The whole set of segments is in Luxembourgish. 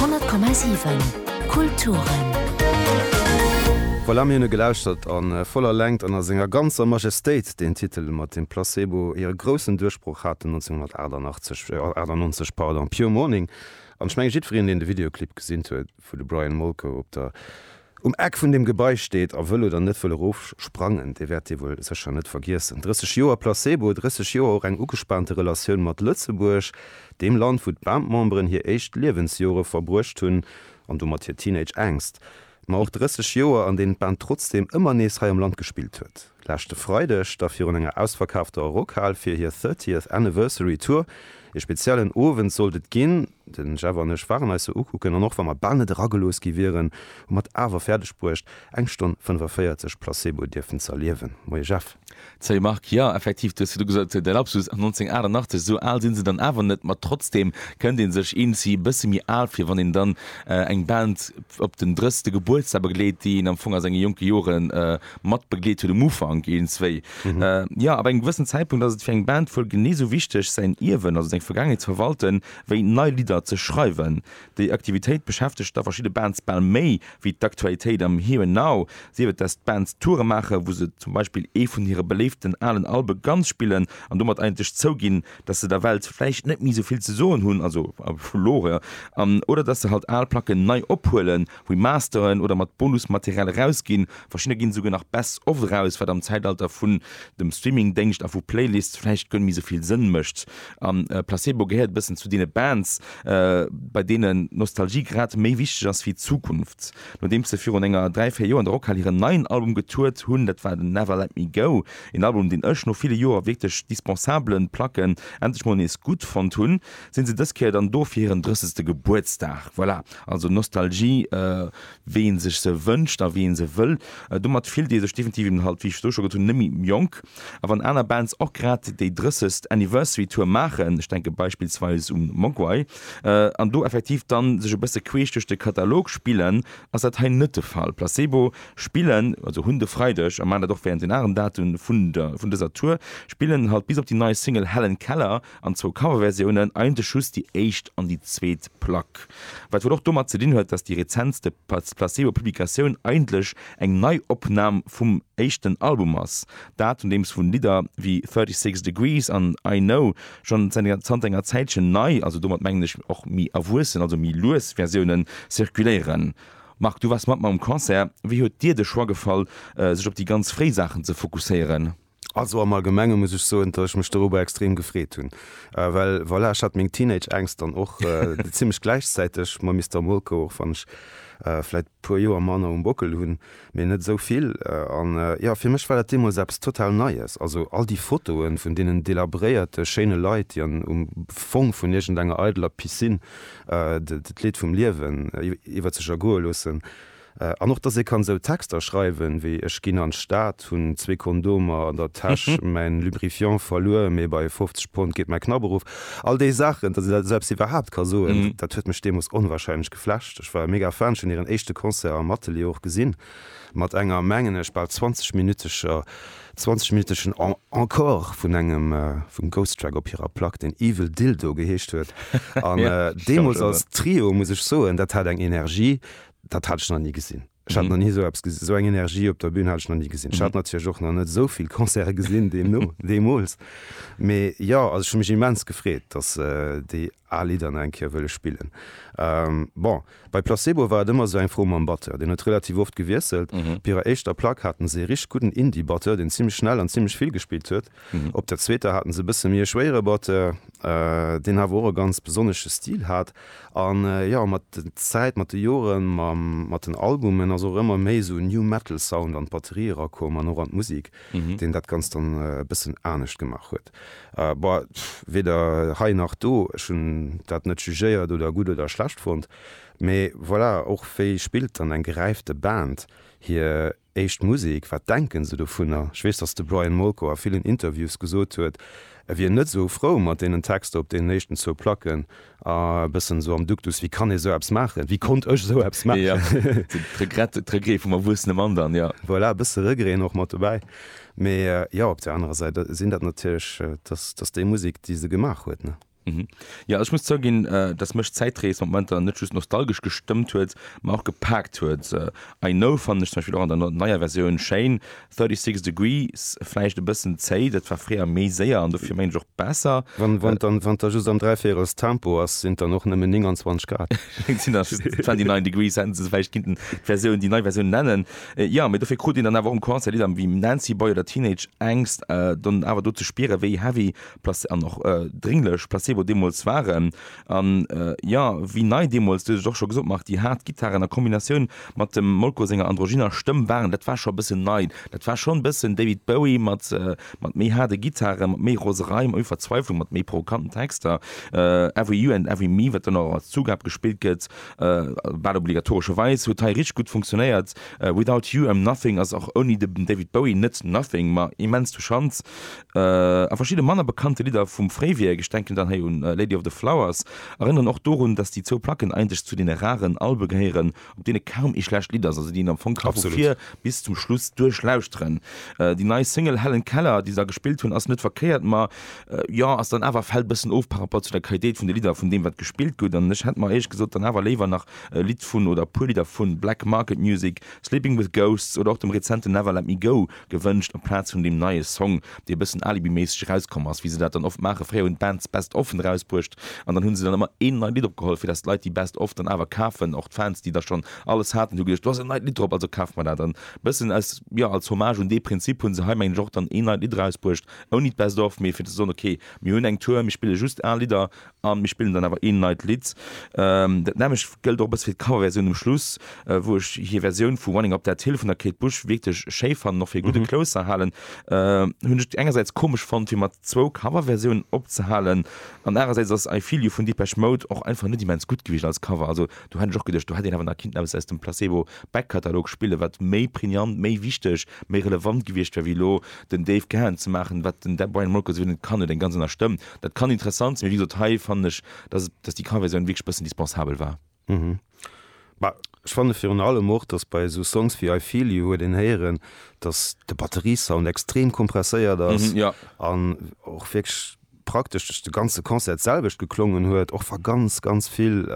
100,7 Kulturen. Voilà, mir hunn e gelauschtert a voller Längt an a senger ganzer Majestéit deen Titel mat dem Placebo hire groussen Duerchbroch haten 1998, pardon, Pure Morning. An ech menge jiddwereen deen de Videoclip gesinn huet, wou de Brian Molko op der Um Eck vun deem Gebai steet, a wëll oder net wëll erofsprangen, dee wäert Dir wuel sécher net vergiessen, 30 Joer Placebo, 30 Joer och eng ugespaante Relatioun mat Lëtzebuerg, deem Land, wou d'Band-Memberen hir éischt Liewensjore verbruecht hunn, an domat hir Teenage-Ängst, ma och 30 Joer, an deenen d'Band trotzdeem ëmmer nees hei am Land gespillt huet, leschte Freideg da virun enger ausverkaafter Rockhal fir hir Thirtieth Anniversary Tour. Ee speziellen Owend sollt et ginn. Den Jeff an ech waren eis se ukucken an och wa mer bal net eragelooss gi wieren, hu mer et awer fäerdeg bruecht eng Stonn 45 Placebo dierfen ze erliewen. Moie Jeff. Salut Marc, jo effektiv, du hues virdru gesot, et wier e Lapsus, 1988, esou al sinn se dann awer net, ma trotzdeem kënnt ee sech iergendwéi e bësse méi al vir, wann een dann eng Band op den 30. Gebuertsdag begleet, déi een am Fong a senge jonke Joren matbegleet huet um Ufank een zwéi Joer. Ab engem gewëssen Zäitpunkt ass et fir eng Band wuel genee sou wichteg säin Ierwen, also seng Vergaangenheet ze verwalten, wéi nei Lidder ze schreiwen. Déi Aktivitéit beschäftegt da verschidde Bands bal méi wéi d'Aktualitéit am Here and Now, sief et dass d'Bands Toure maachen, wou se zum Beispill ee vun hire beléiften alen Albe ganz spillen an domat eigentlech zouginn, dass se der Welt vläicht net méi sou vill ze soen hunn, also vu lore, an oder dass se halt al Placken nei ophuelen. Remasteren oder mat Bonusmaterial erausginn. Verschidder ginn esouguer nach Best of eraus, wat am Zäitalter vun dem Streamingdéngscht a vu Playlists vläicht guer net méi esou vill Sënn mécht. A Placebo gehéiert e bëssen zu deene Bands, bei deenen Nostalgie grad méi wichteg ass wéi d'Zukunft. Nodeems se virun enger dräi, véier Joer an der Rockhal hiren neien Album getourt hunn, dat war den Never Let Me Go, een Album, deen ech no ville Joer wierklech dispensabele Placken endlech mol nees gutt fonnt hunn, sinn se dës Kéier dann do fir hiren drëssesten Gebuertsdag. Voilà. Also Nostalgie, wéi ee sech se wënscht a wéi ee se wëll. Domat fillt ee sech definitiv eben halt, wéi ech elo scho gesot hunn, net méi jonk. A wann aner Bands och grad déi drëssegst Anniversary Tour maachen, ech denke beispillsweis un Mogwai, an do effektiv dann sech e bësse queesch duerch de Katalog spillen, ass dat hei net de Fall. Placebo spillen, also hunn de Freideg a maachen dat och wärend den aneren Datumen vun dëser Tour, spillen halt bis op déi nei Single Helen Keller. an zwou Coverversiounen, eigentlech just déi éischt an déi zweet Plack, wat wuel och domat ze dinn huet, datt déi rezentste Placebo-Publikatioun eigentlech eng Neiopnam vum éischten Album ass, dat un deem vu Lidder wéi 36 Degrees an I Know schonn zanter enger Zäitchen nei, also domat mengen ech och méi erwuessen, also méi lues Versioune zirkuléieren. Marc, du waars mat mer um Concert, wéi huet dir de Choix gefall, sech op déi ganz fréi Saachen ze fokusséieren? Also am Allgemenge muss ech soen, datt ech mech doruwwer extrem gefreet hunn, well voilà, ech hat meng Teenage-Ängscht dann och zimmlech gläichzäiteg mam Mister Molko, och wann ech vläit e puer Joer manner um Bockel hunn, mee net esou vill. An jo, fir mech war dat deemools eppes total Neies, also all déi Fotoe vun deenen delabréierte schéine Leit, déi an um Fong vun iergendengenger eideler Piscine d'Leed vum Liewen iwwer sech ergoe loossen, An och dass ee kann sou Texter schreiwen wéi ech ginn an d'Stad, hunn zwee Kondomer an der Täsch, mäin Lubrifiant verluer, mee bei 50 Pond geet mäi Knapp erof. All déi Saachen, dass ee dat esou eppes iwwerhaapt ka soen, dat huet mech deemoos onwahrscheinlech geflasht. Ech war e mega Fan, ech hunn hiren éischte Concert am Atelier och gesinn, mat enger, mengen ech, bal 20 minütescher, 20 minüteschen Encore vun engem, vum Ghost Track op hirer Plack, deen Evil Dildo geheescht huet. An deemoos als Trio, muss ech soen, dat hat eng Energie, dat hat ech nach ni gesinn. Ech hat nach ni esou eppes gesinn, esou eng Energie op der Bühn hat ech nach ni gesinn. Ech hat natierlech och nach net esou vill Concerte gesinn deemno, deemools. Mee jo, also ech hu mech immens gefreet, datt déi al Lidder nach eng Kéier wëlle spillen. Bon, bei Placebo war et ëmmer esou eng Fro mam Batteur. Deen huet relativ oft gewiesselt. Op hirer éischter Plack haten se ee richteg gudden Indie-Batteur, deen zimmlech schnell an zimmlech vill gespillt huet. Op der zweeter haten se e bësse méi e schwéiere Batteur, deen awer och e ganz besonnesche Stil hat. An jo, mat der Zäit, mat de Joren, mat den Albumen ass och ëmmer méi esou e New Metal Sound an d'Batterie erakomm an och an d'Musik, deen dat Ganzt dann e bëssen anescht gemaach huet. Bon, weder hei nach do, ech hunn dat net jugéiert oder gutt oder schlecht fonnt, mee voilà, och wéi spillt dann eng geräifte Band hir Éischt Musek, wat denken se dovunner? Ech weess, datt de Brian Molko a villen Interviews gesot huet, e wier net esou frou mat deenen Texter op deenen éischten zwou Placken a e bëssen esou am Duktus, Wéi kann ee esou eppes maachen? Wéi konnt ech esou eppes maachen? D'Regrette, d'Regree vum erwuessene Mann dann, jo. Voilà, e bësse Regreen och mat dobäi. Mee jo, op där anerer Säit sinn dat natierlech, dat ass déi Musek, déi se gemaach huet, ne? Mhm. Ja ech muss zouginn, äh, datt mech d'Zäitrees mat Momenter net just nostalgesch gestëmmt huet, ma och gepaakt huet. Äh, I Know fannen ech zum Beispill och an der neier Versioun schéin, 36 Degrees vläicht e bëssen zéi, dat war fréier méi séier an dofir mengen ech och besser. Wann wann dann wann der just am Dräivéierels Tempo ass, sinn dann och nëmmen 29 Grad. Et sinn dann just 29 Degrees, hätten se se vläicht kinnten d'Versioun, déi nei Versioun nennen. Äh, ja, mee dofir krut een dann awer och um Concert Lidder wéi Nancy Boy oder Teenage Angst, äh, dann awer do ze spieren, wéi heavy an och drénglech Placebo deemools waren. An jo, wéi nei deemools, du hues et och scho gesot Marc, déi haart Gittaren a Kombinatioun mat dem Molko senger androgynner Stëmm waren, dat war scho e bëssen nei. Dat war schonn e bëssen David Bowie mat méi haarde Gittaren, mat méi Roserei, mat méi Verzweiflung, mat méi provokanten Texter. Every You and Every Me, wat dann och als Zugab gespillt gëtt, bal obligatorescherweis, huet hei richteg gutt funktionéiert. Without You I'm Nothing ass och ouni de David Bowie net Nothing, ma immens touchant. A verschidde manner bekannte Lidder vum Fréiwierk, ech denken dann hei un Lady of the Flowers, erënneren och dorun, datt déi zwou Placken eigentlech zu deene raren Albe gehéieren, op deene kaum ee schlecht Lidd ass, also déi een am Fong ka vu vir bis zum Schluss duerchlauschteren. Déi nei Single Helen Keller, déi se da gespillt hunn, ass net verkéiert, ma jo, ass dann awer, fält e bëssen of par rapport zu der Qualitéit vun de Lidder vun deem, wat gespillt gëtt. An ech hätt mer éierlech gesot dann awer léiwer nach e Lidd vun, oder e puer Lidder vun Black Market Music, Sleeping With Ghosts oder och dem rezenten Never Let Me Go Gewënscht amplaz vun deem neie Song, dee e bëssen alibiméisseg erauskomm ass, wéi se dat dann oft maachen. Fréier hunn d'Bands d'Best Offen erausbruecht an dann hu se dann ëmmer een neit Lidd opgeholl, fir dass d'Leit déi Best Off dann awer kafen. Och d'Fans, déi da schonn alles haten, hu geduecht, do ass en neit Lidd drop, also kafe mer dat. An e bëssen aus, jo, als Hommage un dee Prinzip hu se hei, mengen ech, och dann een neit Lidd erausbruecht, ouni d'Best Off, mee fir ze soen, okay, mir hunn eng Tour, mir spille just al Lidder A mir spillen dann awer een neit Lidd. Dat nämmlecht gëllt och e bësse fir d'Coverversioun um Schluss, wou ech hir Versioun vu Running Up That Hill vun der Kate Bush wierklech schéi fannen, och fir e gudde Closer halen. Hunn ech engersäits komesch fonnt, fir mat zwou Coverversiounen opzehalen, an anerersäits ass I Feel You vun Depeche Mode och einfach net immens gutt gewiescht als Cover. Also do hätt ech och geduecht, do hätt een awer nach kinnten eppes aus dem Placebo Back Katalog spillen, wat méi pregnant, méi wichteg, méi relevant gewiescht wär, wéi elo den Dave Gahan ze maachen, wat den Brian Molko souwisou net kann huet eng ganz aner Stëmm. Dat kann interessant sinn, mee wéi gesot, hei fannen ech, dass et, dass déi Car-Versioun wierklech e bëssen dispensabel war. Bah, ech fanne virun allem och, dass bei esou Songs wéi I Feel You huet een héieren, dass de Batteriesound extrem kompresséiert ass Mhm, ja. an och wierklech praktesch duerch de ganze Concert d'selwecht geklongen huet, och wa ganz, ganz vill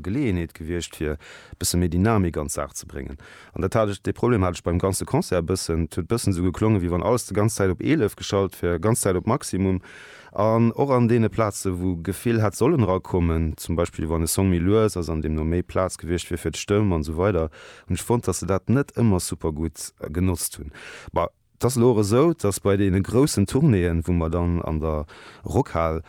Geleeënheet gewiescht wier, e bësse méi Dynamik an d'Saach ze bréngen. An dat hat ech, dee Problem hat ech beim ganze Concert e bëssen. Et huet bëssen esou geklongen, wéi wann alles de ganz Zäit op 11 geschalt wär, ganz Zäit op Maximum. An och an deene Plaze wou Gefill hätt sollen erakommen, zum Beispill wann e Song méi lues ass an deemno méi Plaz gewiescht wier fir d'Stëmm an esou weider, hunn ech fonnt, dass se dat net ëmmer super gutt genotzt hunn. Bah. Et ass elo och esou, dass bei deene groussen Tournéeën, wou mer dann an der Rockhal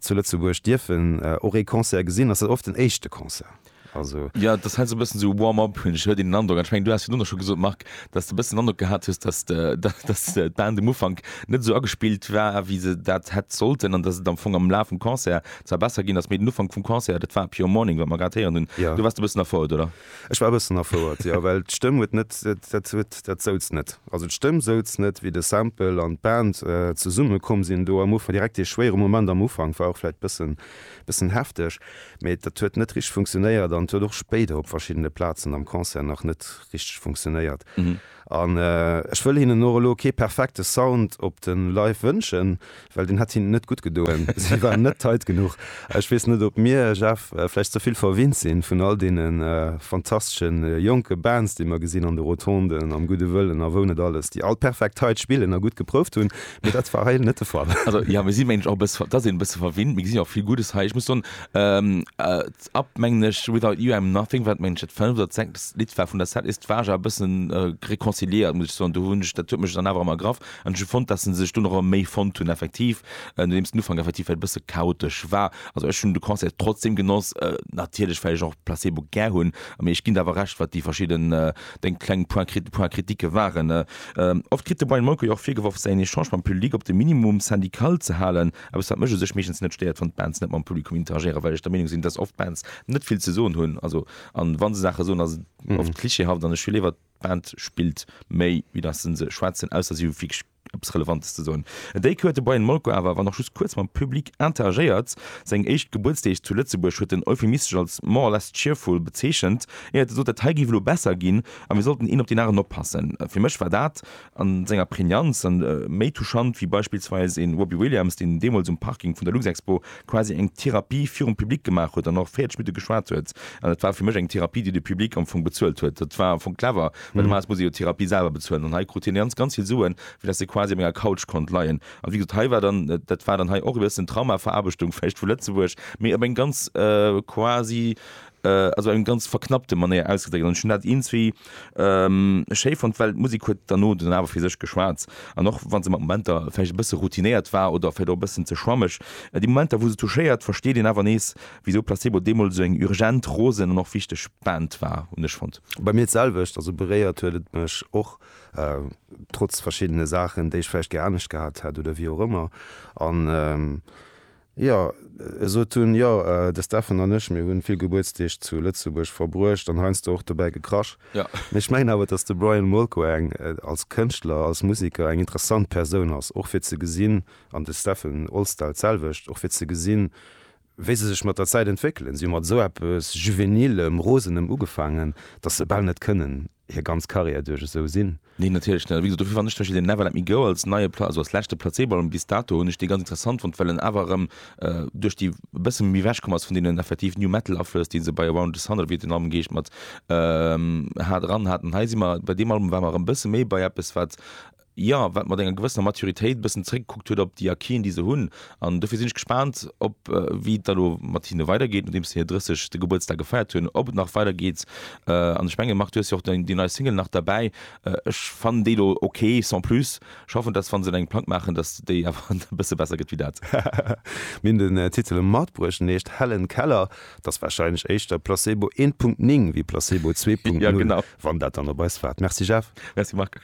zu Lëtzebuerg dierfen och ee Concert gesinn, ass dat oft den éischte Concert. Also. Jo, dass hei sou e bëssen esou e Warm-up, hunn ech elo den Androck. An ech mengen, du has virdrun och scho gesot, Marc, dass s de e bëssen den Androck gehat hues, dass de, dass d'Band um Ufank net esou agespillt war, wéi se dat hätt sollten an dass et am Fong am Laf vum Concert zwar besser ginn ass, mee den Ufank vum Concert, dat war Pure Morning, wat mer grad héieren hunn, do waars de e bëssen erfouert, oder? Ech war e bëssen erfouert, jo, well d'Stëmm huet net, dat huet, dat souz net. Also d'Stëmm souz net, wéi de Sample an d'Band zesumme komm sinn do. Am Ufank war direkt dee schwéiere Moment am Ufank, war och vläicht bëssen, bëssen hefteg, mee dat huet net richteg funktionéiert an et huet och spéider op verschiddene Plazen am Concert nach net richteg funktionéiert. An ech wëll hinnen och elo kee perfekte Sound op de Live wënschen, well deen hätt hinnen net gutt gedoen, si waren net tight genuch. Ech weess net, ob mir, Jeff, vläicht ze vill verwinnt sinn vun all deene fantastesche jonke Bands, déi mer gesinn an de Rotonden, am Gudde Wëllen a wou net alles, déi all perfekt tight spillen a gutt geprouft hunn, mee dat war hei net de Fall. Also jo, mir si mengen och e bësse, dass een e bësse verwinnt, mee gesi jo och vill Guddes hei. Ech muss soen, Up mengen ech, Without You I'm Nothing, wat mengen ech dat fënneft oder sechst Lidd war vun der Set, ist war ech awer e bëssen reconciliéiert muss ech soen. Do hunn ech, dat huet mech dann awer erëm ergraff an ech hu fonnt, datt se sech dunn erëm méi fonnt hunn effektiv, nodeems den Ufank effektiv vläicht e bësse chaotesch war. Also ech hunn de Concert trotzdeem genoss, natierlech well ech och Placebo gär hunn, mee ech ginn der awer Recht wat déi verschidden deng kleng Point crit Points critiques waren. Oft kritt de Brian Molko jo och virgeworf säin Echange mam Public op de Minimum syndical ze halen. Eppes wat mech u sech meeschtens net stéiert, wann d'Bands net mam Publikum interagéieren, well ech der Meenung sinn, dass oft Bands net vill ze soen hunn, also an wa se Saache soen, ass et oft klischeehaft an ech hu léiwer d'Band spillt méi wéi dass se se schwätzen, ausser si hu wierklech eppes Relevantes ze soen. E Déck huet de Brian Molko awer, wann och just kuerz, mam Public interagéiert. Seng éischt Gebuertsdeeg zu Lëtzebuerg huet en euphemistesch als more or less cheerful bezeechent, éiert e sot, dat hei géif elo besser ginn a mir sollten een op deen aneren oppassen. Fir mech war dat a senger Prägnanz an méi touchant wéi beispillsweis een Robbie Williams, deen deemools um Parking vun der Luxexpo quasi eng Therapie virum Public gemaach huet an och 40 Minutte geschwat huet. An dat war fir mech eng Therapie, déi de Public am Fong bezuelt huet. Dat war am Fong clever, well normalerweis muss ee jo d'Therapie selwer bezuelen an hei krut hien ganz, ganz vill Suen, fir dass e quasi op enger Couch konnt leien. An wéi gesot, hei war dann, dat war dann hei och e bëssen Traumaverarbechtung vläicht vu Lëtzebuerg, mee op eng ganz quasi Also eng ganz verknappte Manéier ausgedréckt. An ech hunn dat iergendwéi schéi fonnt, well d'Musek huet derno dunn awer fir sech geschwat. An och wa se mat Momenter vläicht e bësse routinéiert war oder vläicht och e bëssen ze schwammeg, déi Momenter, wou se touchéiert, versteet een awer nees, wisou Placebo deemools esou eng urgent, rosen an och wichteg Band war, hunn ech fonnt. Bei mir d'selwecht. Also beréiert huet et mech och, trotz verschiddene Saachen, déi ech vläicht gär anescht gehat hätt oder wéi och ëmmer. An Jo, esot hunn. Jo, de Steffen an ech, mir hunn vill Gebuertsdeeg zu Lëtzebuerg verbruecht an heiansdo och dobäi gekrasch. Mee ech mengen awer, datt de Brian Molko eng, als Kënschtler, als Musiker, eng interessant Persoun ass, och fir ze gesinn, an de Steffen Olsdal d'selwecht, och fir ze gesinn, wéi se sech mat der Zäit entwéckelen. Si hu mat esou eppes Juvenilem, Rosenem ugefaangen, datt se bal net kënnen. hir ganz Carrière duerch esou sinn. Neen, natierlech net. A wéi gesot, dofir fannen ech zum Beispill deen Never Let Me Go als neie, also als leschte Placebo-Album bis dato, hunn ech dee ganz interessant fonnt, well en awer erëm duerch déi e bësse méi ewechkomm ass vun deenen effektiv New Metal-Aflëss, déi se bei Around The Sun, oder wéi hitt den Album geheescht, mat hat, eran haten. Hei si mer, bei deem Album ware mer erëm e bësse méi bei eppes, wat jo, wat mat enger gewëssener Maturitéit e bëssen zeréckgekuckt huet op déi Acquisen, déi se hunn. An dofir sinn ech gespaant, ob, wéi et da elo mat hinne weidergeet, nodeems se hir 30. Gebuertsdag gefeiert hunn, ob et nach weidergeet. An ech menge Marc, du hues jo och déi nei Single nach derbäi. Ech fannen déi elo ok, sans plus. Ech hoffen, dass wa se engem Plang maachen, dass déi awer e bësse besser gëtt wéi dat. Mir hunn den Titel matbruecht, en heescht Helen Keller. Et ass warscheinlech éischter Placebo 1.9 wéi Placebo 2.0, wann dat dann op eis waart. Merci Jeff. Merci Marc.